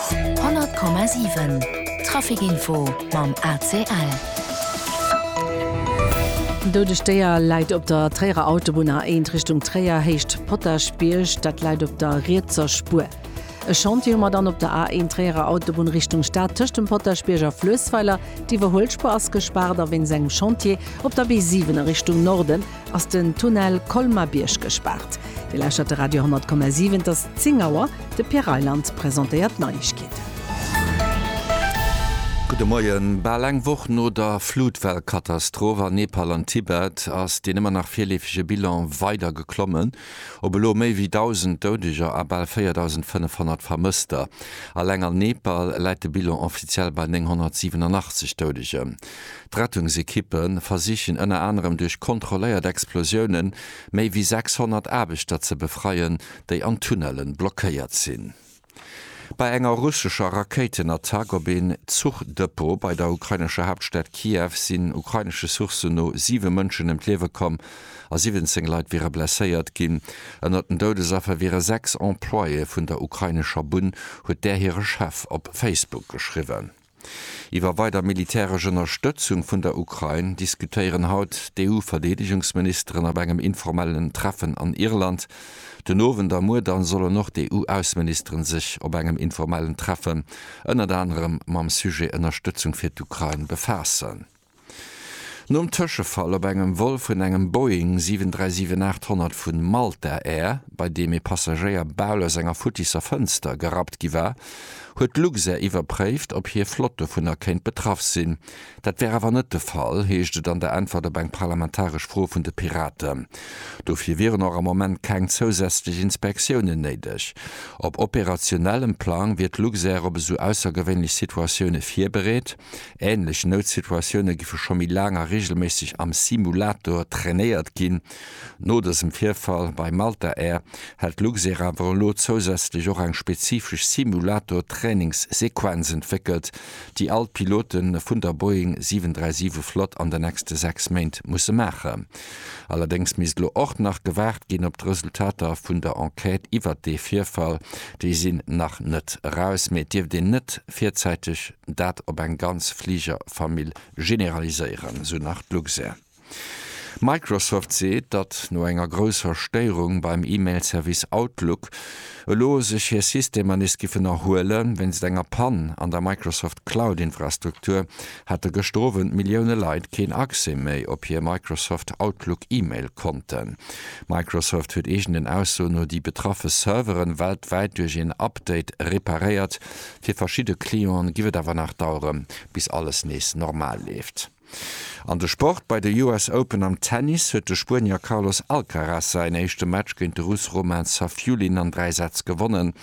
100,7 Traficinfo mam ACL. Doudegt Déier läit op der Tréierer Autobunn, A1 Richtung Tréier, Héicht Potaschbierg. Dat läit op der rietser Spuer. E Chantier hu mer dann op der A1 Tréierer Autobunn Richtung Stad tëscht dem Potaschbierg a Fluessweiler. D'Iwwerhuelspuer ass gespaart a wéinst engem Chantier op der B7 a Richtung Norden ass den Tunnel Colmar-Bierg gespaart. Dir lauschtert de Radio 10,7, et ass 10 Auer, de Pierre Reyland presentéiert d'Neiegkeeten. Gudde Moien. Bal eng Woch no der Flutwell-Katastroph an Nepal an Tibet ass deen ëmmer nach virleefege Bilan weider geklommen op elo méi wéi 1.000 Doudeger a bal 4.500 Vermësster. Alleng an Nepal läit de Bilan offiziell bei 987 Doudegem. D'Rettungsekippe versichen ënner anerem duerch kontrolléiert Explosioune méi wéi 600 Aarbechter ze befreien, déi an Tunnelle blockéiert sinn. Bei enger russescher Rakéitenattack op een Zuchdepot bei der ukrainescher Haaptstad Kiew sinn ukrainesche Sourcen no 7 Mënschen ëm d'Liewe komm a 17 Leit wiere blesséiert ginn. Ënnert den Doudesaffer wiere 6 Employéë vun der ukrainescher Bunn, huet där hire Chef op Facebook geschriwwen. Iwwer weider militäresch Ënnerstëtzung vun der Ukrain diskutéieren haut d'EU-Verdeedegungsministeren op engem informellen Treffen an Irland. Den Owend a muer da sollen och d'EU-Ausseministeren sech op engem informellen Treffen ënnert anerem mam Sujet Ënnerstëtzung fir d'Ukrain befaassen. Nom Tëschefall op engem Vol vun engem Boeing 737-800 vu Malta Air, bei deem ee Passagéier bal aus enger futtisser Fënster gerappt gi war, huet d'Luxair iwwerpréift, ob hir Flott dovunner kéint betraff sinn. Dat wär awer net de Fall, heescht et an der Äntwert op eng parlamentaresch Fro vun de Piraten. Dofir wieren och am Moment keng zousätzlech Inspektiounen néideg. Op operationellem Plang wier d'Luxair op esou aussergewéinlech Situatioune virbereet. Ähnlech Noutsituatioune giffe scho méi laang a reegelméisseg am Simulator trainéiert ginn. No dësem Virfall bei Malta Air hält Luxair awer elo zousätzlech och eng spezifesch Simulator-Trainingssequenz entwéckelt, déi all d'Pilote vun der Boeing 737 Flott an den nächste 6 Méint musse maachen. Allerdéngs misst elo och nach gewaart ginn op d'Resultater vun der Enquête iwwert dee Virfall. Déi sinn nach net eraus, mee et dierft een net virzäiteg. dat op eng ganz Fligerfamill generaliséieren, esou nach d'Luxair. Microsoft seet, datt no enger grousser Stéierung beim E-Mail-Service Outlook, elo sech hir Systemer nees giffen erhuelen. Wéinst enger Pann an der Microsoft Cloud-Infrastruktur hate gëschter Owend Millioune Leit keen Accès méi op hir Microsoft Outlook E-Mail-Konten. Microsoft huet eegenen Aussoen no déi betraffe Servere weltwäit duerch een Update reparéiert, Fir verschidde Clienten giff et awer nach daueren, bis alles nees normal leeft. An de Sport, Bei de US Open am Tennis huet de Spuenier Carlos Alcaraz säin éischte Match géint de Russ Roman Safiullin an 3 Sätz gewonnen.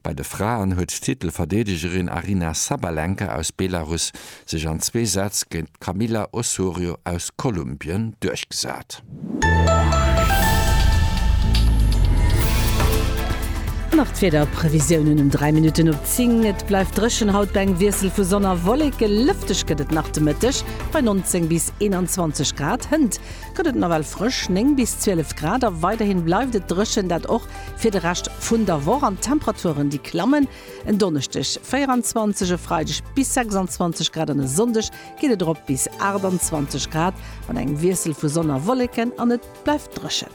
Bei de Fraen huet d'Titelverdeedegerin Aryna Sabalenka aus Belarus sech an zwee Sätz géint d'Camila Osorio aus Kolumbien duerchgesat. Nach d'Wiederprevisiounen um 3 Minutten op 10, Et bleift dréchen haut bei engem Wiessel vu Sonn a Wolleke. Lëfteg gëtt et nach de Mëtteg bei 19 bis 21 Grad. Hënt gëtt et nawell frësch, 9 bis 12 Grad, a weiderhi bleift et dréchen, dat och fir de Rescht vun der Woch. An d'Temperaturen, déi klammen. En Donneschdeg 24, e Freideg bis 26 Grad an e Sonndeg geet et erop bis 28 Grad mat engem Wiessel vu Sonn a Wolleken an et bleift dréchen.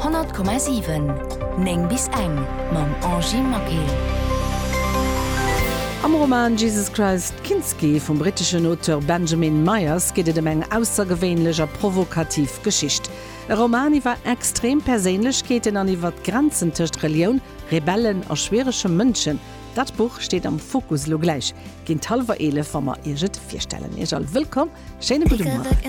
100,7 9 bis eng mam Angie Maquet. Am Roman Jesus Christ Kinski vum britteschen Auteur Benjamin Myers geet et ëm eng aussergewéinlech a provokativ Geschicht. E Roman iwwer extrem Perséinlechkeeten an iwwert d'Grenzen tëscht Relioun, Rebellen a schwierege Mënschen, dat Buch steet am Fokus. Elo gläich géint hallwer 11 wa mer Iech et virstellen. Iech all wëllkomm, schéine gudde Mueren.